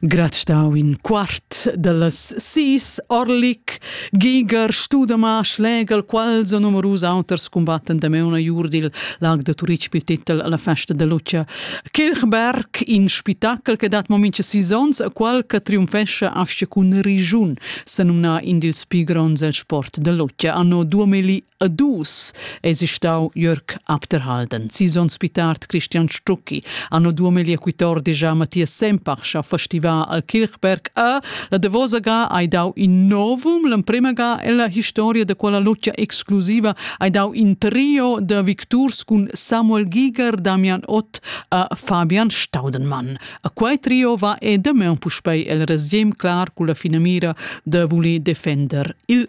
Grad stau in quart dallas sis Orlik, Giger, Studema, Schlegel, quals e numerus auters combatten da meuna jur dil lag da Turitg pil titel alla festa de Lucia. Kirchberg, in spitacel che dat mo mincha sis ons a qual che triumfescha asce cun Rijun, se numna in dils pli gronds el sport de Lucia anno 2000 A dus esi stau Jörg Abderhalden, sison spitart Christian Stucki, anno 2014 a Matthias Sempach ha festival al Kirchberg a la Devosa ga hai dau in novum, l'emprema ga è la historia da quella luccia exclusiva hai dau in trio da victurs cun Samuel Giger, Damian Ott a Fabian Staudenmann. A quei trio va e demain puspei el resgem clar cu la finamira de voli defender il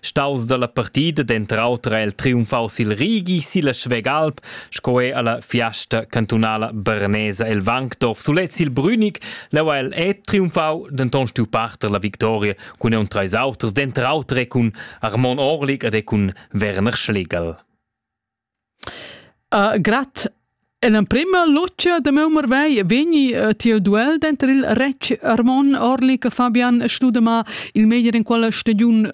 Staus dalla partida denter auter ha el triumfau sil Rigi, silla Schwegalp sco er alla Fiasta cantunala bernesa el Wankdorf. Sulez il Brünig leu ha el et triumfau, denton stiu parter la victoria cun un treis auters, denter auter e cun Armon Orlik ed e cun Werner Schlegel. Grat. In emprema lutgia da meu marvegl vegni tiel duel denter il retg Armon Orli che Fabian Studema il meglier in quella stagiun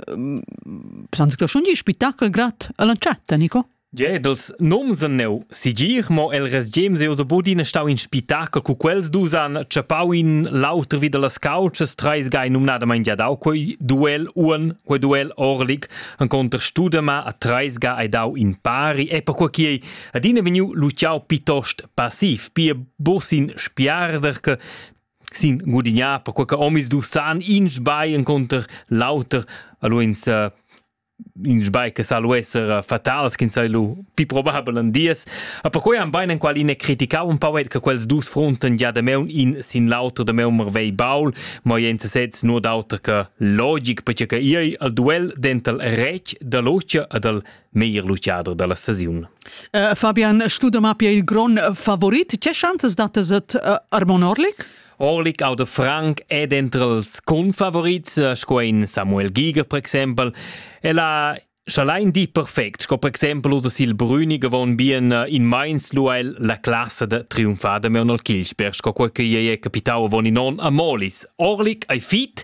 senza graschun di spettacol grat all'entschatta, Nico? Ge, dals noms en neu sigir, mo el resgem se oso bodin stau in spettacol cu quels dus han tschappau in l'auter vi dallas couches, treis gai numnadamain giadau quei duel un, quei duel orlic, Encunter Studema a Treisga hai dau in pari e perquei quei adina vegniu luciau piuttost passiv, pia busin spiarder che sin gudignar perquei che omis du san in sbai encunter l'auter, allo ins in sbai che sa lu esser fatals, ch'ins sai lu pi probabel en dies. A perquei han bein en qual ina criticau un pauet che quels dus fronten già da meun in sin l'auter da meun Marvei Baul, mo jent sez nur d'auter che logic perche che ei al duel dental rec da locia e dal meglier luciader dalla staziun. Uh, Fabian Studemappia il gron favorit, che chances datas et uh, Armon Orlik? Orlik auter Frank è dentro els confavorits, sco in Samuel Giger per exempel. E la Scha lain dir perfect, sco per exempel usa sil Brüni gavon bien eh, in meins luel la classa da triumfada Meonol Kilsper, sco quel che ei è capitau avon in on a Molis. Orlic ei fit,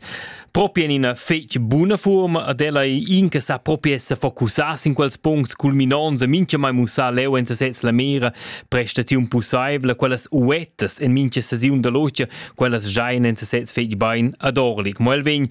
propi en ina fetg buna forma ad ella ei in che sa propi essa focussar sin quels punts culminonts e mincha mai mussar leu en sesez la mera prestaziun pussaivla, quellas uettas en mincha sesiun da logia, quellas giain en sesez fetg bein ad Orlic. Mo el vegn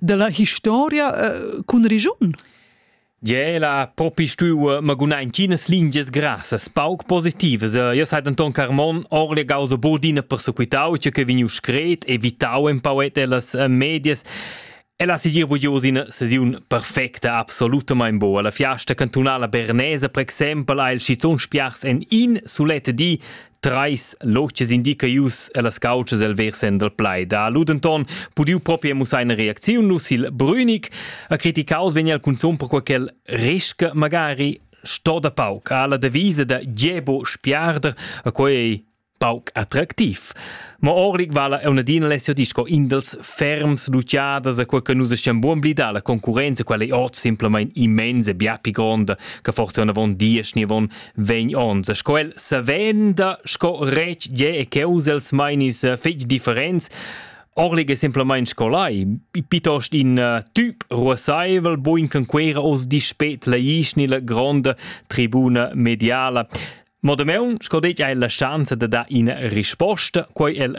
della historia uh, cun regiun? Ge la propi stuiu maguna in cinas lingias grassas pauc positivas. Io sai denton Carmon orle gauso bodina persequitau, che che vegniu scret, evitau en pauet ellas eh, medias. E la sigir bugius in sesiun perfecta, absolutamain boa. La fiasta cantunala bernese, per exempel, ha il schizun spiars en in sulet di Trais notgs indica ius ellas couchas el versen dal plaid. Ha lu denton pudiu propria mussar ina reacziun lu sil Brünig. A criticaus vegn el cunzun per quel resca magari sto da pauc. Ha la devisa da Gebo spiarder, a quei ei pauc attractiv. Ma Orlik vala è un'adina Alessio Disco in dels ferms luciadas a quel che nus stiamo buon blida la concurenza quella è oz simplesmente immensa e bia più gronda che forse una von dies ni von Vegn ons sco el savenda sco retg ge e cheus els mainis eh, fetg differents Orlig è semplamain scolai, piuttost in uh, typ ruosaivel, buin con quera os dispet la ischni la gronda tribuna mediala. Mo de meun, sco det, hai la chance de da ina risposta, quei el